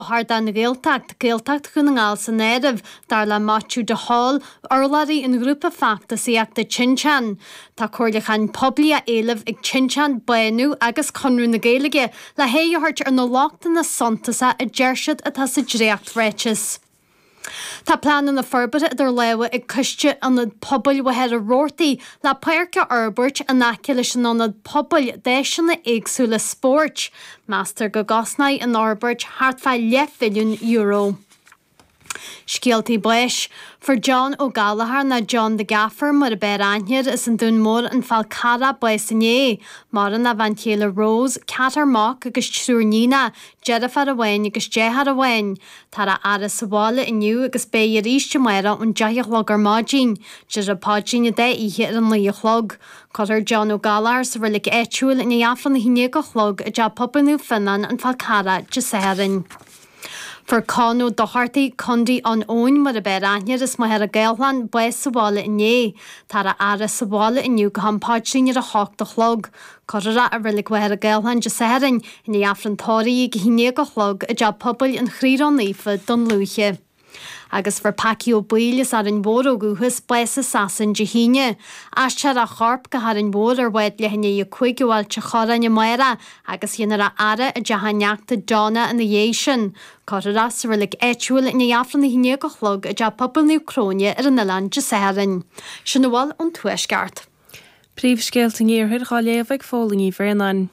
don Ghaeltacht, Gaeltacht Dhún na nGall san áireamh, dar le Maitiú de Hál, urlabhraí an ghrúpa feachtasaíochta Tinteán. Tá comhairliúchán poiblí á éileamh ag Tinteán, Bánú agus Conradh na Gaeilge le haghaidh a thabhairt ar na lochtanna suntasacha a deir siad atá sa dréacht-ráiteas. Tá pleananna forbartha idir lámha ag coiste Ionad Pobail Mhachaire Rabhartaigh le páirc a fhorbairt in aice leis an ionad pobail d'áiseanna éagsúla spóirt. Meastar go gcosnóidh an fhorbairt thart fá leathmhilliún euro. Scéaltaí Báis Fuair John Ó Gallachár, nó John the Gaffer mar ab fhearr aithne air as an Dún Mór, an Fál Carrach, bás inné. Maireann a bhean chéile Rose, ceathrar mac agus triúr níonacha, deirfiúr amháin agus deartháir amháin. Táthar á fhaire sa bhaile inniu agus beidh arís amárach ón deich a chlog ar maidin. Déarfar an Paidrín gach oíche ar a naoi a chlog. Cuirfear John Ó Gallachár sa reilig áitiúil i ndiaidh Aifreann a haon déag a chlog i dteach pobail Naomh Fionán an Fál Carrach Dé Sathairn. Fuair Con Ó Dochartaigh, Condaí Eoin mar ab fhearr aithne air as Machaire Gathlán, bás sa bhaile inné. Táthar á fhaire sa bhaile inniu go ham Paidrín ar a hocht a chlog. Cuirfear é i Reilig Mhachaire Gathlán Dé Sathairn i ndiaidh Aifreann Tórraimh a 11 a chlog i dTeach Pobail an Chroí Rónaofa, Dún Lúiche. Agus fuair Packy Ó Baoill as Árainn Mhór ó dhúchas bás i Sasain Dé hAoine. Aistreofar a chorp go hÁrainn Mhór ar bhád leath i ndiaidh a 5 ó Ailt an Chorráin amárach agus déanfar é a fhaire i dteach a neachta Donna ina dhiaidh sin. Cuirfear é sa reilig áitiúil i ndiaidh Aifreann a 11 a chlog i dTeach Pobail Naomh Cróine ar an oileán Dé Sathairn. Sin a bhfuil ón Tuaisceart. Príomhscéalta an Iarthair dhá léamh ag Póilín Ní Bhraonáin.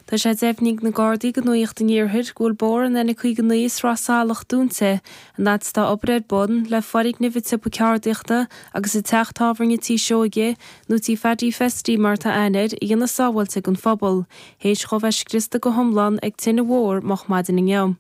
Tá sé deimhnithe ag na Gardaí go Nuaíocht an Iarthair go bhfuil bóthar an N59 i Sraith Salach dúnta in áit a bhfuil obair ar bun le foirgneamh an tsiopa ceardaíochta agus an teach tábhairne Tí Seoige nó Tí Phaddy Festy mar atá aithne air a dhéanamh sábháilte don phobal théis dhóibh a bheith scriosta go hiomlán ag tine mhór moch maidin inniu.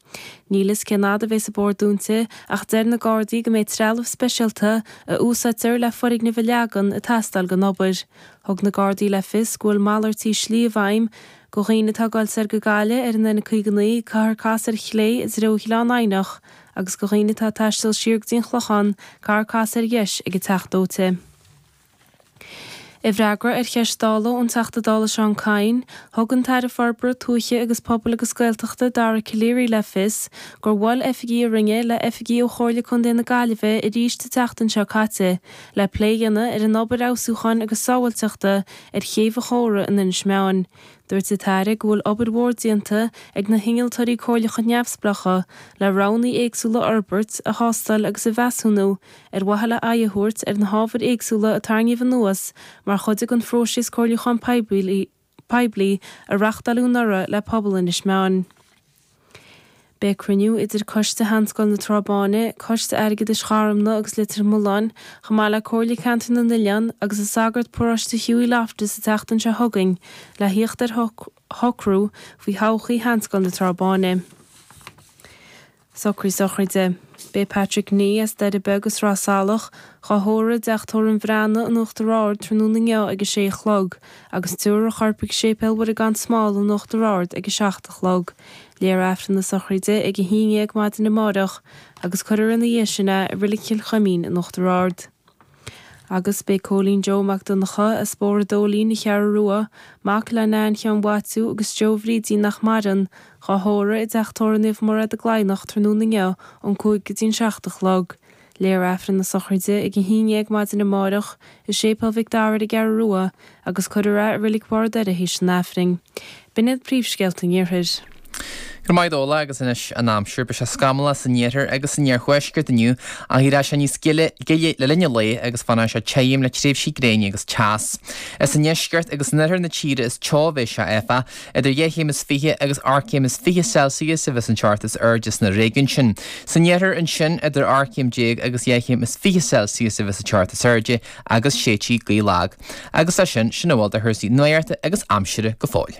Níl fhios cén fhad a bheas an bóthar dúnta ach deir na Gardaí go mbeidh trealamh speisialta a úsáidtear le foirgnimh a leagan, ag teastáil don obair. Thug na Gardaí le fios go bhfuil malairt slí i bhfeidhm go dhaoine atá ag dul soir go Gaillimh ar an N59 caithfear casadh ar chlé i dtreo Ghleann Eidhneach agus go dhaoine atá ag taisteal siar go dtí an Clochán, caithfear casadh ar dheis ag an Teach Dóite. I bhfreagra ar cheist Dála ón Teachta Dála Seán Kyne, thug an tAire Forbartha Tuaithe agus Pobail agus Gaeltachta Dara Calleary le fios gur bhuail oifigigh a Roinne le oifigigh ó Chomhairle Contae na Gaillimhe arís an tseachtain seo caite le plé a dhéanamh ar an obair fheabhsúcháin agus sábháilteachta ar Chéibh an Chóra in Inis Meáin. Dúirt an tAire go bhfuil obair mhór déanta ag na hInnealtóirí Comhairleacha Neamhspleácha le roghannaí éagsúla a fhorbairt, a thástáil agus a mheasúnú ar mhaithe le aghaidh a thabhairt ar na hábhair éagsúla a tarraingíodh anuas mar chuid den phróiseas comhairliúcháin poiblí a reachtáileadh anuraidh le pobal Inis Meáin. Beidh cruinniú idir Coiste Sheanscoil na Trá Báine, Coiste Airgeadais Gharumna agus Leitir Mealláin, chomh maith le Comhairle Ceantair na nOileán agus an Sagart Paróiste Hughie Loftus an tseachtain seo chugainn le theacht ar shocrú faoi thodhchaí Sheanscoil na Trá Báine. Socruithe sochraide. Beidh Patrick Nee, as Doire Beag i Sraith Salach, dhá thórramh i dteach tórraimh an Bhreathnaigh, in Uachtar Ard tráthnóna inniu ag a sé a chlog, agus tabharfar a chorp ag Séipéal Mhuire Gan Smál in Uachtar Ard ag a seacht a chlog. Léifear Aifreann na sochraide ag a haon dhéag maidin amáireach, agus cuirfear ina dhiaidh sin é i Reilig Chill Chuimín in Uachtar Ard. Agus beidh Cóilín Joe Mac Donncha, as Bóthar an Dóilín, an Cheathrú Rua, mac le Nain Sheáin Mhaitiú agus Joe Bhrídín nach maireann, dhá thórramh i dteach tórraimh Naomh Mairéad i gCladhnach tráthnóna inniu ón cúig go dtí an seacht a chlog. Léifear Aifreann na sochraide ag a haon dhéag maidin amáireach i Séipéal Mhic Dara ar an gCeathrú Rua agus cuirfear é i Reilig Bharr an Doire th'éis an Aifrinn. B'in iad príomhscéalta an Iarthair. Go raibh maith agat, Dónall, agus anois an aimsir. Beidh sé scamallach san iarthar agus san iarthuaisceart inniu ach éireoidh sé níos gile le linn an lae agus fanfaidh sé tirim le tréimhsí gréine agus teas. Is i ndeisceart agus in oirthear na tíre is teo a bheidh sé áfach, idir dhá chéim is fiche agus ocht gcéim is fiche Celsius a bheas an teocht is airde sna réigiúin sin. San iarthar ansin idir ocht gcéim déag agus dhá chéim is fiche Celsius a bheas an teocht is airde agus séidfidh gaoth lag. Agus leis sin, sin a bhfuil de chúrsaí nuachta agus aimsire go fóill.